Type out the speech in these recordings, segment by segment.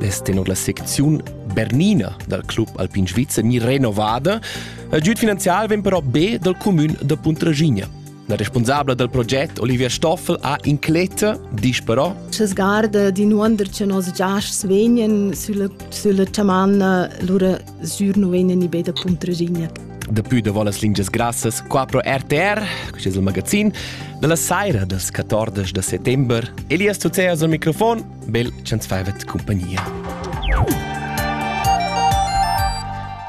Lez tenor la secziun Bernina dal club alpin svizzer ni renovada. Il giud finanzial vegn però be dal cumün da Puntraschigna. La responsabla dal proget Olivia Stoffel ha incletta, dice però Che sgarda di nuonder che nos giasts vegnan sulla, sulla chamanna, lura sur nu vegnan ni be da Puntraschigna. Daplü da las lingias grassas qua pro RTR, quest è il magazin, dalla saira dals 14 da settembre. Elias Tucea al microfon bel ch'ans faivat cumpagnia.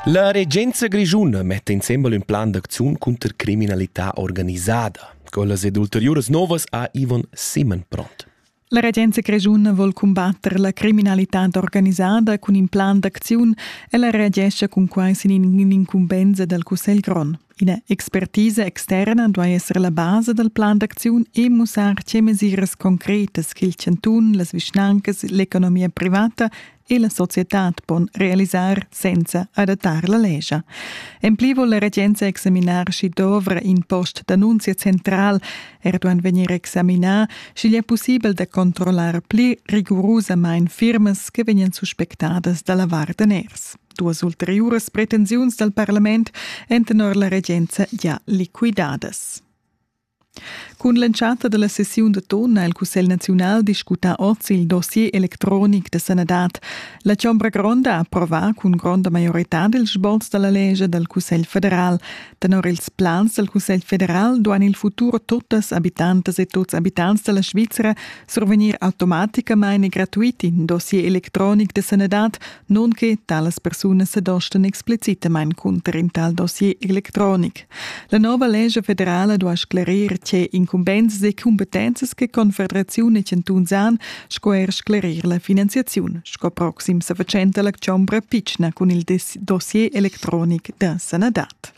La regenza grischuna metta insembel ün plan d'acziun cunter criminalità organisada. Quellas ed ulteriuras novas ha Ivan Simon pront. La regenza grischuna vuol cumbatter la criminalità organisada cun in plan d'acziun e la reagescha cun quai sin in incumbensa dal Cussegl grond. Ina expertisa externa duai esser la basa dal plan d'acziun e mussar tge mesiras concretas ch'il chantun, las vischnancas, l'economia privata e la societad pon realisar senza adattar la lescha. En pli vul la regenza examinar sch'i dovra in post d'annunzia central, er duan vegnir examinà, sch'igl è pussibel da controllar pli rigurusamain firmas che vegnan suspectadas da lavar daners. Duas ulteriuras pretensiuns dal parlament èn tenor la regenza gia liquidadas. Cun l'entschatta della sessiun da ton ha il Cussegl naziunal discutà oz il dossier electronic da sanadad. La Chombra Gronda ha approvà cun gronda maioritad il sboz dalla legge dal Cussegl federal. Tenor ils plans dal Cussegl federal duan il futur tuttas habitantas e tuts abitants della Svizzera survegnir automaticamain e gratuit in dossier electronic da sanadad nun che talas persunas se dostan explicitamain cunter in tal dossier electronic. La nova lescha federala duai sclarir tge incumbensas e cumpetenzas che Confederaziun e chantuns han sco er sclarir la finanziaziun, sco proxim sa fatschenta la chombra pitschna cun il dossier electronic da sanadad.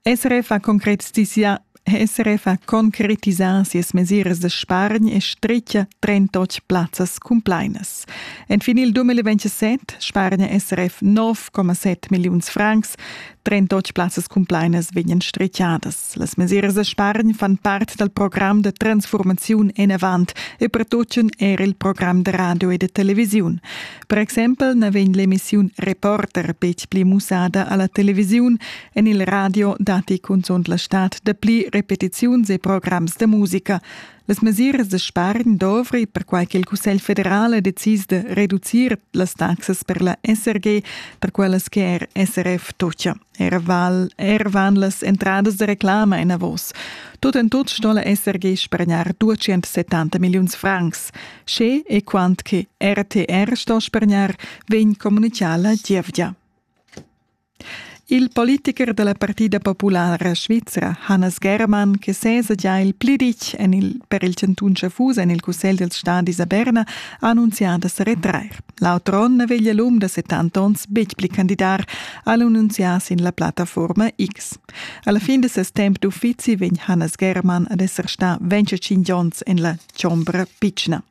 SRF ha concretisà SRF ha concretisà sias mesiras da spargn e stritga 38 plazzas cumplainas. Enfin il 2027 spargna SRF 9,7 milliuns francs. 38 plazzas cumplainas vegnan stritgadas. Las mesiras da spargn fan part dal program da transformaziun enavant e pertutgan er il program da radio e da televisiun. Per exempel na vegn l'emissiun Reporter betg pli mussada a la televisiun en il radio datti cunzunt la stad dapli repetiziuns e programs da musica. Las mesiras da spargn dovri, perquai che il Cussegl federal è decis de reducir las taxas per la SRG, per quellas che er SRF tocia. Era val, er van las entradas de reclama enavos. Tut en tut stolla esser ge spargnar 270 milliuns francs. Sche e quant che RTR sto spargnar, vegn comunicala gievgia. Il politiker della Partida Populara Svizra, Hannes Germann, che sesa già il plidich en il, per il cantun Schaffhausen en il Cussegl dels Stadis a Berna, ha annunziato da retrair. L'auton na veglia l'um da 70 onns betg pli candidar, ha annunzià sin la plattaforma X. Alla fin de ses temp d'uffizi vegn Hannes Germann ad esser stà 25 onns en la chombra pitschna.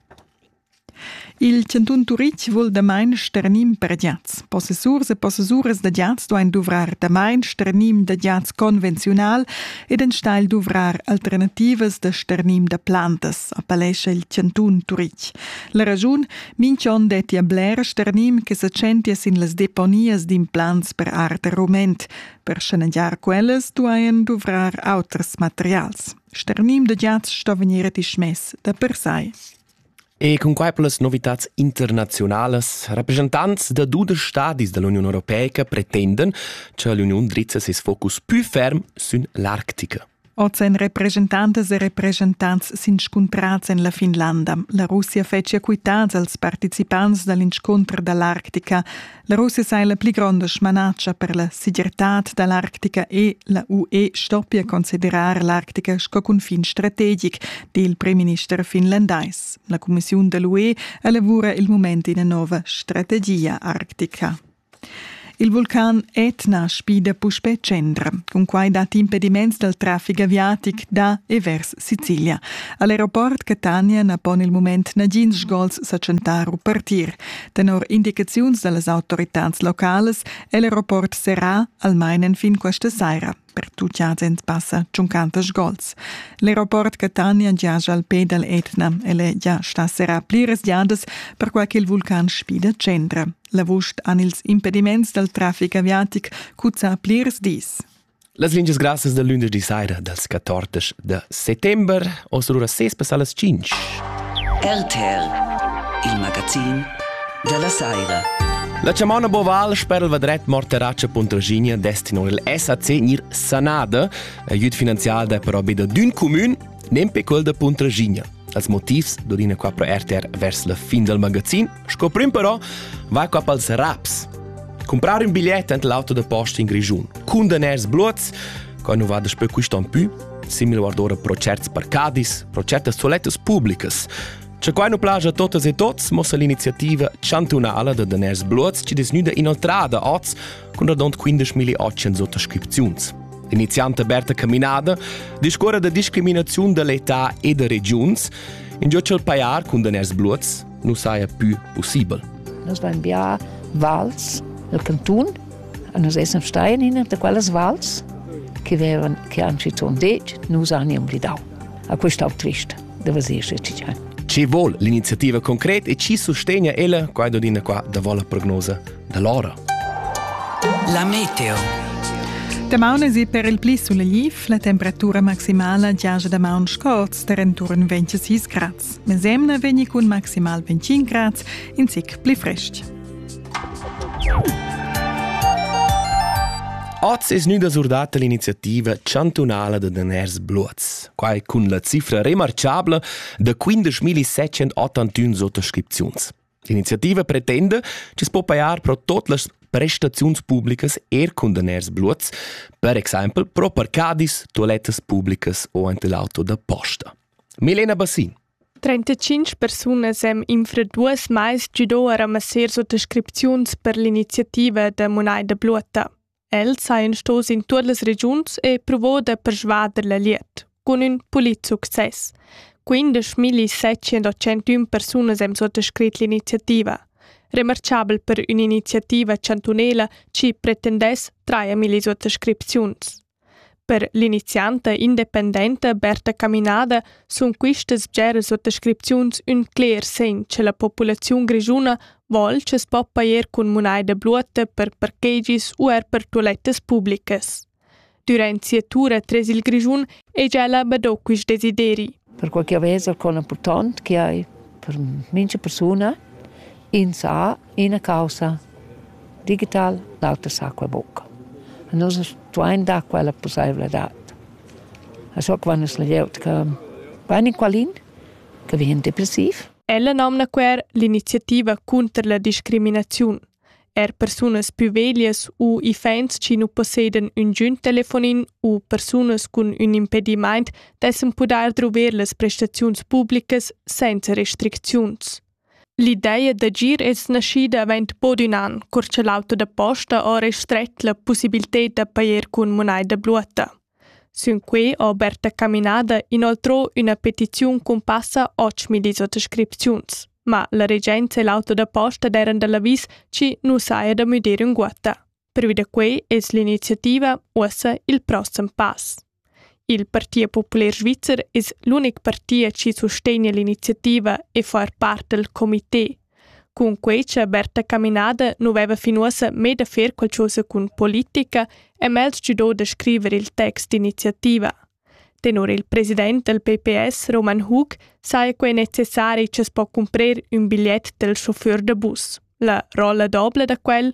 Il chantun Turitg vul damain sternim per giats. Possessurs e possessuras da giats duain duvrar damain sternim da giats convenziunal ed enstagl duvrar alternativas da sternim da plantas, appellescha il chantun Turitg. La raschun Minch'on dettia blers ternim che sa tschentia sin las deponias d'implants per art e rument. Per schanegiar quellas duajan duvrar auters materials. Sternim da giats sto vegnir dismess da per sai. E cun quai per las novitats internazionalas, rappresentants da dudesch stadis dall'Uniun Europeica pretendan, che l'Uniun drizza ses focus più ferm sün l'Arctica. Oz èn represchentantas e represchentants s'inscuntrads en la Finlanda. La Russia fetschia quitads als participants da l'inscunter da l'Arctica. La Russia sai la pli gronda smanatscha per la segirtad da l'Arctica e la UE stoppia considerar l'Arctica sco cunfin strategic, di il primminister finlandais. La cumissiun da l'UE elavura il mument ina nova strategia Arctica. Il vulcan Etna spida puspè tschendra. Cunquai datti impediments dal traffic aviatic da e vers Sicilia. A l'aeroport Catania na pon il mument nagins sgols sa tschentar u partir. Tenor indicaziuns da las autoritads localas è l'aeroport serrà almain fin questa saira. per tuts agens passa tschuncantas gols. L'aeroport Catania giaja al pe dal Etna. El è già stà serrà pliras giadas, perquai ch'il vulcan sfida tschendra. L'avust han ils impediments dal traffic aviatic cuzzà plirs dis. Las lingias grassas da lunedì saira dals 14 de settembre Oz lura sespessar las 5. RTL, il magazin della Saira. La chamona Boval sper il vadret Morteraccia Pontraginia destinò il SAC nir Sanada, aiut finanzial da però be da d'ün comun, nempe quel da Pontraginia. Als motivs dorina qua pro RTR vers la fin dal magazin Sco prim però va cap als raps. Comprar un bigliet ent l'auto da posta in Grischun. Cundaners bluots, qua nu va daspö quist on pü, simil guardora pro certs parcadis, pro certas toilettas publicas. Che qua nu plaja a totas e tots mossa l'iniziativa chantunala da daners bluots chi desnüda inoltrada oz cun radont 15.800 ottascripziuns. L'inizianta Berta Caminada discuora da discriminaziun da l'età e da regiuns, in giò ch'el pajar cun daners bluots, nu saja pü pussibel. Nus vain bià vals del cantun, nus essan stai in ina da quellas vals che vevan che han schizunt detg nus han blidau. A questa trist da vasir cigian. Chi vuol l'iniziativa concret e chi sustegna ella qua d'ina qua da vola prognosa da l'ora. La meteo. Damaun si per il pli sul Liv la temperatura maximala giaja damaun scorz per intorno 26 grads. Mesemna vegni cun maximal 25 grads in sec pli frest. Oz es gnüda surdata l'iniziativa chantunala da daners bluots. Quai cun la cifra remarchabla da 15.781 sottoscripziuns. L'iniziativa pretenda che si può paiar pro tot las prestaziuns publicas er cun daners bluots, per exempel pro parcadis, toilettas publicas o ante l'auto da posta. Milena Bassin. 35 persunas han infra duas mais giudò a ramassar suttascripziuns per l'iniziativa da Munaida Bluota. Els hajan sto sin tuot las regiuns e provò da persvader la liet, cun ün pulit success. 15.701 persunas han sottoscrit l'iniziativa. Remarchabel per ün'iniziativa chantunela chi pretendess 3.000 suttascripziuns. Per l'inizianta independenta Berta Caminada sun quistas bgeras suottascripziuns ün cler segn cha la populaziun grischuna voul cha's po pajer cun munaida bluotta per parkegis u eir per tualettas publicas. Dürant sia tura tres il Grischun hegia ella bado quist desideri. perquai ch'eu vez alcun impurtant chi hai per mincha persuna. Ün sa, üna causa digital, l'auter sa quai buca. A nus stuain dar quella pussaivladad. A so quan es la glieud che vain in qualin, che vien depressiv. Ella nomna quer l'iniziativa cunter la discriminaziun. Er persunas pü veglias u iffaints chi nu possedan ün giün telefonin u persunas cun ün impedimaint dessan pudair druver las prestaziuns publicas sainza restricziuns. L'ideja d'agir es naschida avaunt bod ün an, cur cha l'auto da posta ha restret la pussibilted da pajer cun munaida bluotta. Sün quei ho Berta Caminada inoltrò üna petiziun cun passa otschmillis otg scripziuns, ma la regenza e l'auto da posta d'eiran da l'avis chi nu saja da müder ünguotta. Pervi da quei es l'iniziativa uossa il prossem pass. Il Partit Popular Svizzer es l'unic partit chi sustegna l'iniziativa e fa part dal comité Cun quei che Berta Caminada nu veva fin uossa mê da fer qualchosa cun politica è Mels gidò da scriver il text d'iniziativa. Tenor il president del PPS Roman Hug saja quei necessari che s'po cumprer ün bigliet del chauffeur da bus. La rolla dobla da quel?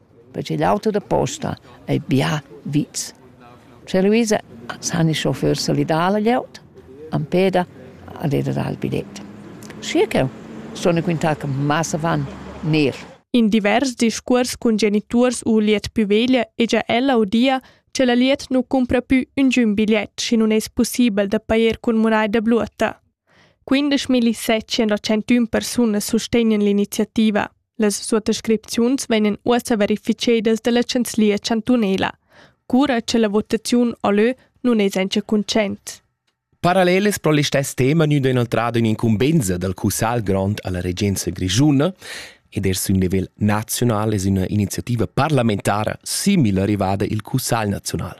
perche l'auto da posta ei bia vits. Scha Luisa s'ha ni chauffeur salidà la glieud, am peda ad era dar il bilet. Schi ch'eu sun quintà che massa van ner. In divers discuors cun geniturs u liet pü veglia hegia ella udia che la liet nu cumpra pü üngün bigliet, schi nun es pussibel da pajer cun munai da bluotta. 15.700 persunas sustegnan l'iniziativa. Las suttascripziuns vegnan uossa verificedas dalla chanzlia chantunela, cura che la votaziun o lö nun es auncha cuntschaint. Paralleles pro listess tema gnüda inoltrada ün'incumbenza dal Cussagl grond alla regenza grischuna ed er sün nivel nazional es üna iniziativa parlamentara simil arrivada il Cussagl nazional.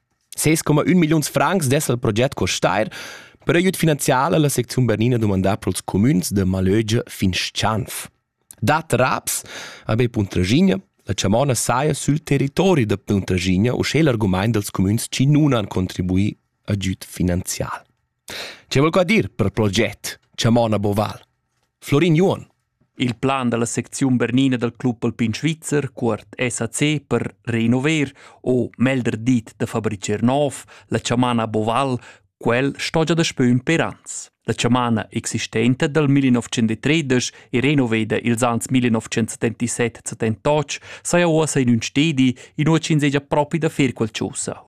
6,1 milliuns francs dess il proget costar, per aiüt finanzial la secziun bernina dumandà pro'ls cumüns da Malögia fin Schanf. Dat raps a be Puntraschigna, la chamona saja sül territori da Puntraschigna uschè l'argumaint dals cumüns chi nun han contribuì agüd finanzial. Che voul qua dir per proget, chamona Boval? Florin Juon. Il plan dalla secziun bernina dal Club Alpin Svizzer, cuort SAC, per renover o melder dit da fabricer nov, la chamana Boval, quel sto già daspö ün per ans. La chamana existenta dal 1930 e renoveda ils ans 1977-78 saja uossa in ün stedi, inua ch'ins hegia propi da fer qualchosa.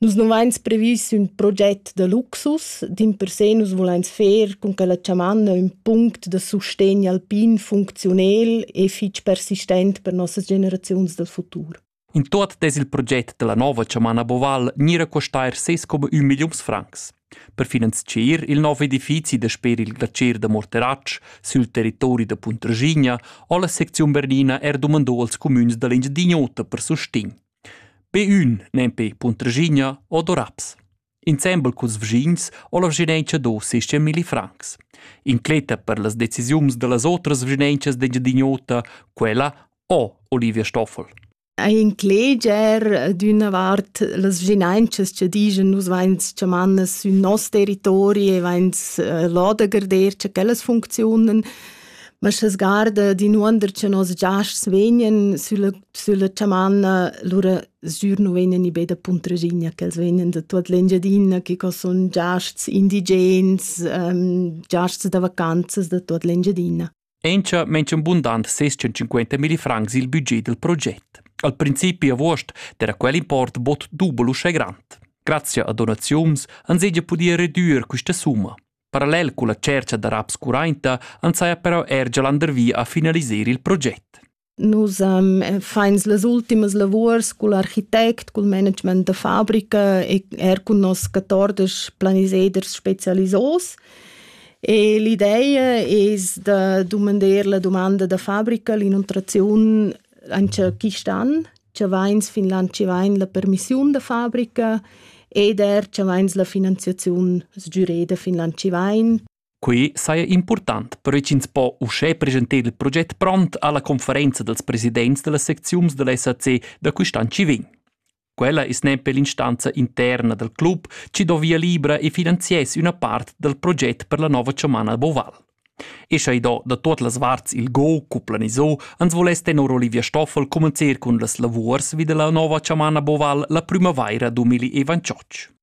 Nus non vains previs ün proget da luxus, dimpersè nus vulains fer cun quella chamanna ün punct da sustegn alpin funcziunel e fich persistent per nossas generaziuns dal futur. In tuot dess il proget da la nouva chamanna Boval gnir a costair ses come ün milliuns francs. Per finanzier il nov edifizi dasper il glacier da Morteratsch sül territori da Puntraschigna ho la secziun Bernina er dumandò als cumüns da l'Engiadin'Ota per sustegn. Be ün nempe Puntraschigna o do raps. Insembel culs vischins ho la vischinanza do seis milli francs. Incletta per las decisiuns da las otras vischinancas d'Engiadin'Ota quella o Olivia Stoffel. Ei incleger d'üna vart las vischinancas che digen nus vains chamannas sün nos territori e vains lodagarder cha quellas funcziunen ma sche sgarda d'inuonder cha nos giasts vegnan sülla sülla chamanna, lura sgür nu vegnan i be da Puntraschigna ch'els vegnan da tuot l'Engiadina chi co sun giasts indigens, giasts da vacanzas da tuot l'Engiadina. Encha mention bundant 650.000 francs il budget del proget. Al principi avuost era quel import bod dubel uschè grand. Grazie a donaziuns ans hegia pudia redüer quista summa. Parallel culla tschercha da raps curainta ans haja però er gia landervi a finaliser il proget. Nus um, fains las ultimas lavurs cul architect, cul management da fabrica e er cun nos 14 planiseders specialisos. E l'ideia es da dumandar la domanda da fabrica, l'inuntraziun Anche quist'an cha vains Finland chi vain la permissiun da fabrica ed er cha vains la finanziaziun sgüreda da Finland chi vain. Quei saja important, perche ch'ins po uschè presentar il proget pront alla conferenza dels presidents dellas secziuns della SAC da quist'an chi vegn. Quella es nempe l'instanza interna dal club chi do via libra e finanziess üna part dal proget per la nova chomana Boval. E scha i do da tuot las varts il go cu planiso, ans voless tenor Olivia Stoffel comencer cun las lavuors vi da la nova chamana Boval la prümavaira 2021.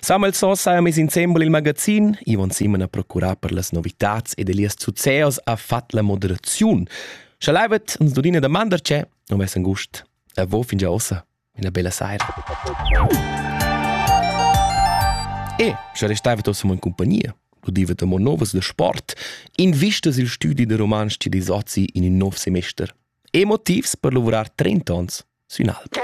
Samuel Soss ha mis insembel il magazin. Ivan Simon ha procurà per las novitads ed Elias Zuzeos ha fatg la moderaziun. Sche levet uns dudina domanda c'è, non vessan gust. A vo fin già ossa. Una bella saira. E sche restava ossa in compagnia, udiva mo novas de sport, invistas il studi de romansch di Sozzi in il nov semester. E motivs per lavorar 30 ans sün alp.